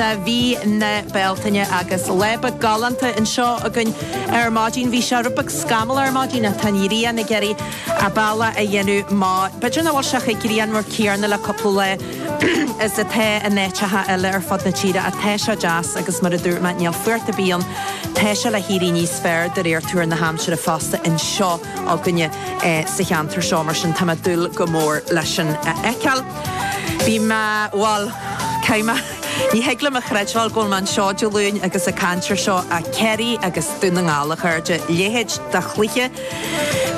Gaeltachta mhí na Bealtaine agus lá breá galánta anseo againn ar maidin. Bhí sé rud beag scamallach ar maidin ach tá an ghrian ag iarraidh a bealach a dhéanamh amach, b'fhéidir nach bhfuil sé chomh grianmhar céarna le cúpla lá is atá in áiteacha eile ar fud na tíre ach tá sé deas agus mar a dúirt mé níl fuacht ar bith ann, tá sé le héirí níos fearr de réir tuar na haimsire fosta anseo againne sa cheantar seo mar sin tá mé ag dúil go mór leis sin a fheiceáil. Bhí mé, bhuel, tá mé. Ní thig liom a chreidbheáil go bhfuil mé anseo Dé Luain agus ag caint ar seo, Ciarraí agus Dún na nGall a chairde, a leithéid de chluiche.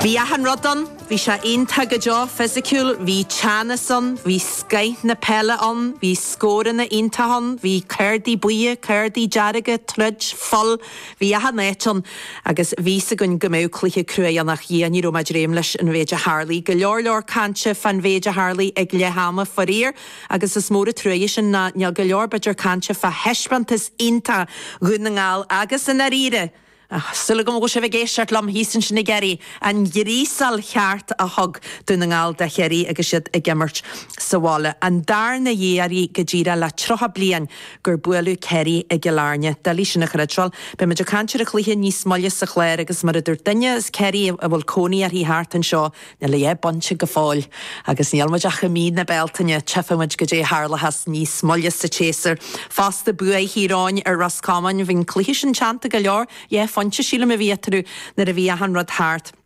Bhí achan rud ann, bhí sé iontach go deo fisiciúil, bhí teannas ann, bhí scoith na peile ann, bhí scóranna iontacha ann, bhí cárdaí buí, cárdaí dearga, troid, fuil, Bhí achan áit ann agus bhí 'fhios againn go mbeadh cluiche cruaidh ann ach a Dhia ní raibh muid réidh leis an mhéid a tharlaigh. Go leor leor cainte fán mhéid a tharlaigh ag leath ama, faraor, agus is mór an truaigh sin nó níl go leor b'fhéidir cainte fá thaispeántas iontach Dhún na nGall agus, i ndáiríre, súil agam go bhfuil sibh ag éisteacht liom thíos ansin i gCiarraí, an ghríosáil cheart a thug Dún na nGall do Chiarraí agus iad ag imirt sa bhaile. An darna hiarraidh go díreach le 30 bliain. gur buaileadh Ciarraí i gCill Airne. Doiligh é sin a chreidbheáil. Beidh muid ag caint ar an chluiche níos moille sa chlár agus, mar a dúirt duine as Ciarraí a bhfuil cónaí uirthi thart anseo, níl a dhath bainte go fóill agus níl muid ach i mí na Bealtaine. Tchífidh muid cad é a tharlóchas níos moille sa tséasúr. Fosta, bua Thír Eoghain ar Ros Comáin, bhí an cluiche sin teannta go leor. Dhá phointe, sílim, a bhí eatarthu nuair a bhí achan rud thart.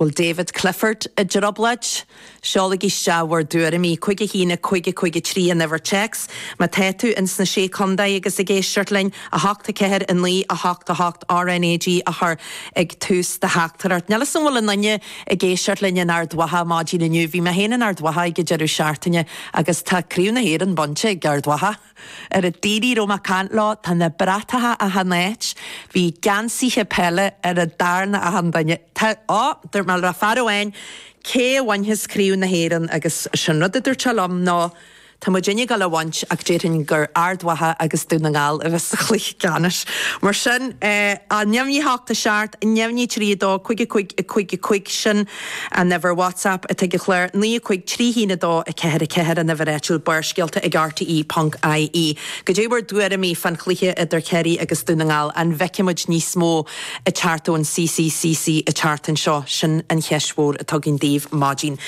bhfuil David Clifford i dtrioblóid? Seolaigí isteach bhur dtuairimí 5 1 5 5 3 an uimhir téacs má tá tú ins na Sé Chontae agus ag éisteacht linn, 8 4 9 8 8 RNAG a chur ag tús do theachtaireacht. Níl 'fhios a'm bhfuil aon duine ag éisteacht linn in Ard Mhacha maidin inniu, bhí mé féin in Ard Mhacha ag an deireadh seachtaine agus tá Craobh na hÉireann bainte ag Ard Mhacha. Ar a dtaoirí raibh Mac Cana leo, tá na bratacha achan áit. Bhí geansaithe peile ar an darna achan duine. Tá, á, dúirt mé le fear amháin, cé a bhainfeas Craobh na hÉireann agus is é an rud a dúirt sé liom ná, tá muidinne ag gabháil á bhaint ach déarfainn gur Ard Mhacha agus Dún na nGall a bheas sa chluiche ceannais. Mar sin, á, neamhní a hocht a seacht, neamhní a trí a dó, cúig a cúig, a cúig, a cúig, sin, An Uimhir WhatsApp atá ag an chlár, 9 5 3 1 2 4 4 an uimhir áitiúil, Barrscéalta ag rte ponc IE. Cad é bhur dtuairimí fán chluiche idir Ciarraí agus Dún na nGall? An bhfeicfidh muid níos mó ag teacht ón CCCC an tseachtain seo? Sin an cheist mhór atá againn daoibh maidin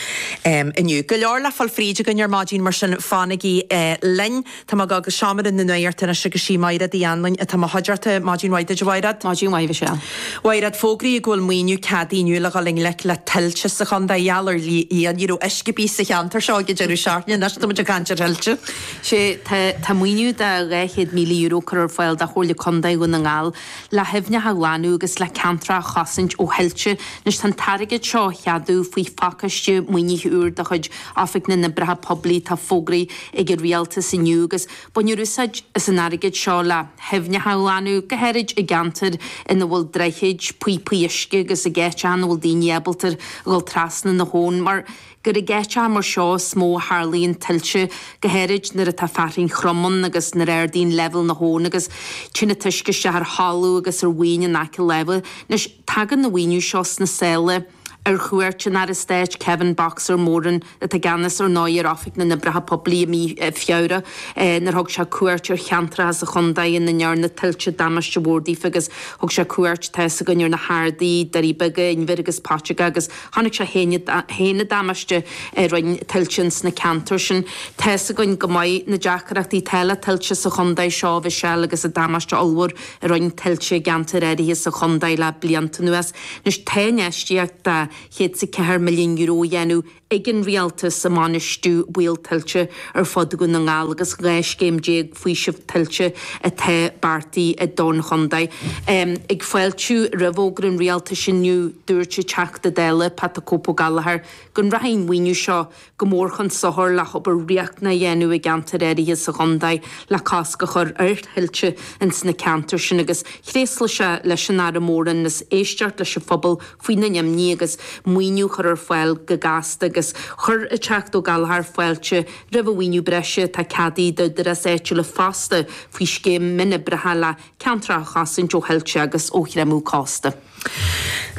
inniu. Go leor le fáil fríd againn ar maidin mar sin fanaigí linn. Tá mé ag gabháil go seomra na nuachta anois agus is í Máiréad Uí Anluain atá i mo chuideachta. Maidin mhaith duit, a Mháiréad. Maidin mhaith, a Mhichelle. A Mháiréad, fógraíodh go bhfuil maoiniú ceadaithe inniu le ghabháil i ngleic le tuilte sa chontae. Gheall ar Éowyn, ní raibh uisce ar bith sa cheantar seo ag an deireadh seachtaine. Anois táimid ag caint ar thuilte. Sea, tá, tá maoiniú de €200,000 curtha ar fáil do Chomhairle Contae Dhún na nGall le haibhneacha a ghlanadh agus le ceantracha a chosaint ó thuilte. Anois tá an t-airgead seo á cheadú faoi phacáiste maoinithe úr de chuid Oifig na nOibreacha Poiblí, atá fógraithe ag an rialtas inniu agus bainfear úsáid as an airgead seo le haibhneacha a ghlanadh, go háirid i gceantair ina bhfuil droichid, píopaí uisce agus ag áiteacha ina bhfuil daoine ábalta dhul trasna na habhann, mar gur ag áiteacha mar seo is mó a tharlaíonn tuilte, go háirid nuair atá fearthainn throm ann agus nuair a ardaíonn leibhéal na habhann agus téann an t-uisce isteach ar thalamh agus ar mhaoin in aice láimhe. Anois, tagann an maoiniú seo sna sála. Ar chuairt an Aire Stáit Kevin 'Boxer' Moran, atá i gceannas ar ndóigh ar Oifig na nOibreacha Poiblí i mí Feabhra, nuair a thug sé cuairt ar cheantracha sa chontae ina ndearna tuilte damáiste mhór daofa agus thug sé cuairt, tá 'fhios againn, ar na hArdaí, Doirí Beaga, Inbhir agus Paiteaga agus chonaic sé féin an damáiste a rinne tuilte ins na ceantair sin. Tá 'fhios againn go maith na deacrachtaí atá le tuilte sa chontae seo a Mhichelle agus an damáiste ollmhór a rinn tuilte i gceantair áirithe sa chontae le blianta anuas, anois tá infheistíocht de €104 milliún á dhéanamh ag an Rialtas i mbainistiú baol tuilte ar fud Dhún na nGall agus 12 scéim faoisimh tuilte atá beartaithe don chontae. Ag fáiltiú roimh fhógra an Rialtais inniu, dúirt an Teachta Dála Pat the Cope Ó Gallchóir go rachaidh an maoiniú seo go mór chun sochair le hobair riachtanach a dhéanamh i gceantair áirithe sa chontae le cosc a chur ar thuilte ins na ceantair sin agus thréaslaigh sé leis an Aire Moran as éisteacht leis an phobal faoina n-imní agus maoiniú a chur ar fáil go gasta agus chuir an Teachta Ó Gallchóir fáilte roimh an mhaoiniú breise atá ceadaithe d'Údaráis Áitiúla fosta faoi scéim mionoibreacha le ceantracha a chosaint ó thuilte agus ó chreimeadh cósta.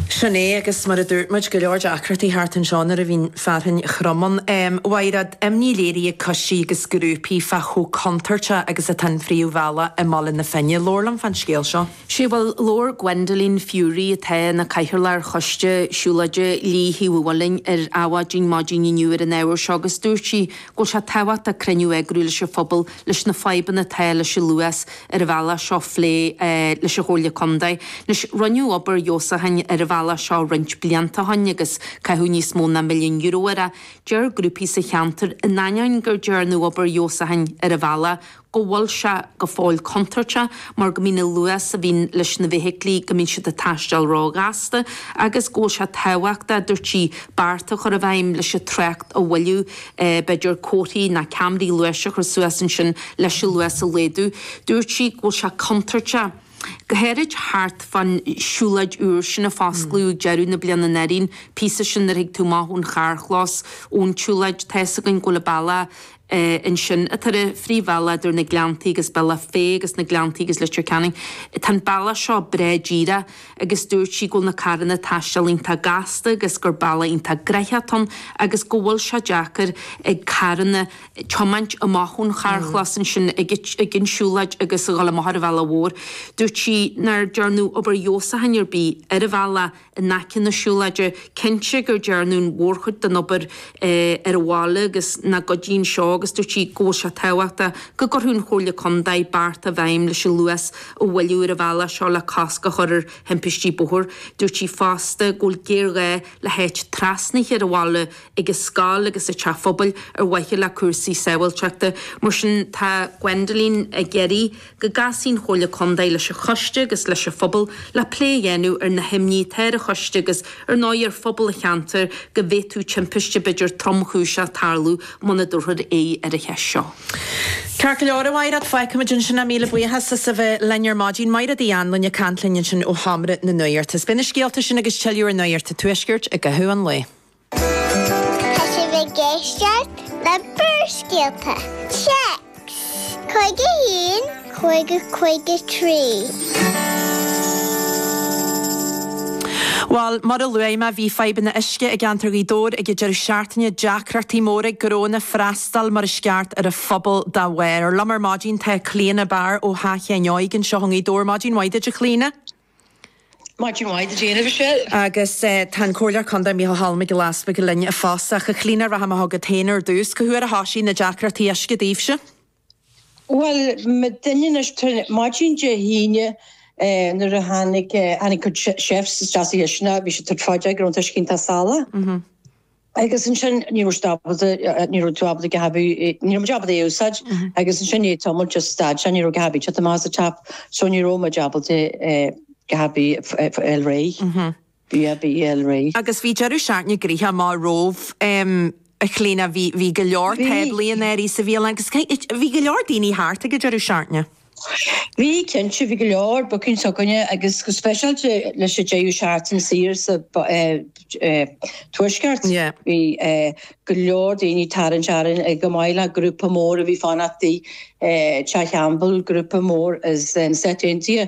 Sin é, agus mar a dúirt muid, go leor deacrachtaí thart anseo nuair a bhíonn fearthainn throm ann. A Mháiréad, imní léirithe ag coistí agus grúpaí fá chomh contúirteach agus atá an phríomhbhealach i mBaile na Finne. Labhair liom fán scéal seo. Sea, bhuel, labhair Gwendolene Furey, atá ina cathaoirleach ar choiste siúlóide Lios Uí Mhaoileain ar Adhmhaidin maidin inniu ar an ábhar seo agus dúirt sí go bhfuil sé tábhachtach cruinniú a eagrú leis an phobal leis na fadhbanna atá leis an luas ar an bhealach seo a phlé leis an Chomhairle Contae. Anois, rinneadh obair leasúcháin ar an bhealach seo roinnt blianta ó shin agus caitheadh níos mó ná milliún euro air. Deir grúpaí sa cheantar, in ainneoin go dearnadh obair leasúcháin ar an bhealach, go bhfuil sé go fóill contúirteach mar go mbíonn an luas a bhíonn leis na feithiclí, go mbíonn siad ag taisteal ró-ghasta agus go bhfuil sé tábhachtach, a dúirt sí, bearta a chur i bhfeidhm leis an trácht a mhoilliú. b'fhéidir, comharthaí nó ceamaraí luais a chur suas ansin leis an luas a laghdú. Dúirt sí go bhfuil sé contúirteach, go háirid thart fán siúlóid úr sin a fosclaíodh ag deireadh na bliana. An fhírinne, an píosa sin nuair a thig tú amach ón charrchlós, ón tsiúlóid, tá fhios againn go bhfuil an bealach ansin atá ar an phríomhbhealach idir na Gleanntaí agus Bealach Féith agus na Gleanntaí agus Leitir Ceanainn, tá an bealach seo breá díreach. agus dúirt sí go bhfuil na carranna ag taisteal iontach gasta agus gur bealach iontach gnoitheach atá ann agus go bhfuil sé deacair ag carranna tiomáint amach ón charrchlós ansin ag an tsiúlóid agus a dhul amach ar an bhealach mhór. Dúirt sí nár dearnadh obair dheisiúcháin ar bith ar an bhealach in aice na siúlóide, cinnte gur dearnadh an mhórchuid den obair ar an bhaile agus na cosáin seo agus dúirt sí go bhfuil sé tábhachtach go gcuirfeadh an Chomhairle Contae bearta i bhfeidhm leis an luas a mhoilliú ar an bhealach seo le cosc a chur ar thimpistí bóthair. Dúirt sí fosta go bhfuil géarghá le háit trasnaithe ar an bhaile ag an scoil agus an teach phobail ar mhaithe le cúrsaí sábháilteachta. Mar sin, tá Gwendoline ag iarraidh go gcasfaidh an Chomhairle Contae leis an choiste agus leis an phobal le plé a dhéanamh ar na himní atá ar an choiste agus, ar ndóigh, ar phobal an cheantair go bhféadfadh timpiste b'fhéidir tromchúiseach tarlú muna dtabharfar aghaidh ar an cheist seo. Ceart go leor a Mháire, fágfaimid ansin é, míle buíochas as a bheith linn ar maidin. Máire Uí Anluain ag caint linn ansin ó Sheomra na Nuachta. Is beidh na scéalta sin agus tuilleadh ar Nuacht an Tuaiscirt i gcaitheamh an lae. Tá sibh ag éisteacht le Barrscéalta Téacs 51. 553. Bhuel, mar a luaigh mé, bhí fadhbanna uisce i gceantar Ghaoth Dobhair ag an deireadh seachtaine, deacrachtaí móra ag gnónna freastal mar is ceart ar an phobal dá bharr. Liom ar maidin tá Clíodhna Barr ó Theach Sheáin Óig anseo i nGaoth Dobhair. Maidin mhaith duit, a Chlíodhna. Maidin mhaith duit féin, a Michelle. Agus tá an Comhairleoir Contae Micheál Choilm Mac Giolla Easbuig linn fosta. A Chlíodhna, rachaidh mé chugat féin ar dtús. Cá huair a thoisigh na deacrachtaí uisce daoibhse? Bhuel, maidin Dé hAoine, maidin Dé hAoine, nuair a tháinig, tháinig cuid chefs isteach sa chistineach, bhí siad tabhairt faoi deara go raibh an t-uisce iontach salach. Agus ansin, ní raibh siad ábalta, ní raibh tú ábalta a dhath, ní raibh muid ábalta é a úsáid. Agus ansin i ndiaidh tamaill just stad sé, ní raibh a dhath ar bith ag teacht amach as an tap, so ní raibh muid ábalta a dhath ar bith a fháil réidh. a dhath ar bith a fháil réidh. agus bhí deireadh seachtaine gnoitheach amach romhaibh, a Chlíodhna. Bhí go leor táblaí in áirithe sa bhialann agus bhí go leor daoine thart ag an deireadh searc na. Bhí, cinnte. Bhí go leor bookings istigh againn agus go speisialta leis an deireadh seachtaine saor sa Tuaisceart. Bhí go leor daoine ag tarraingt orainn, chomh maith le grúpa mór a bhí ag fanacht i dTeach Campbell, grúpa mór as na Stáit Aontaithe.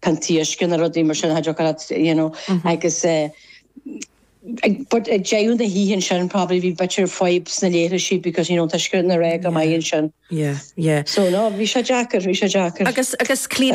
taoisce nó rudaí mar sin, hydrochlorate, you know, agus but ag deireadh na hoíche ansin probably bhí bit of fadhb sna laochraisí because, you know, an t-uisce ní raibh go maith ansin. Yeah, yeah. So, no, bhí sé deacair, bhí sé deacair. Agus, agus clean.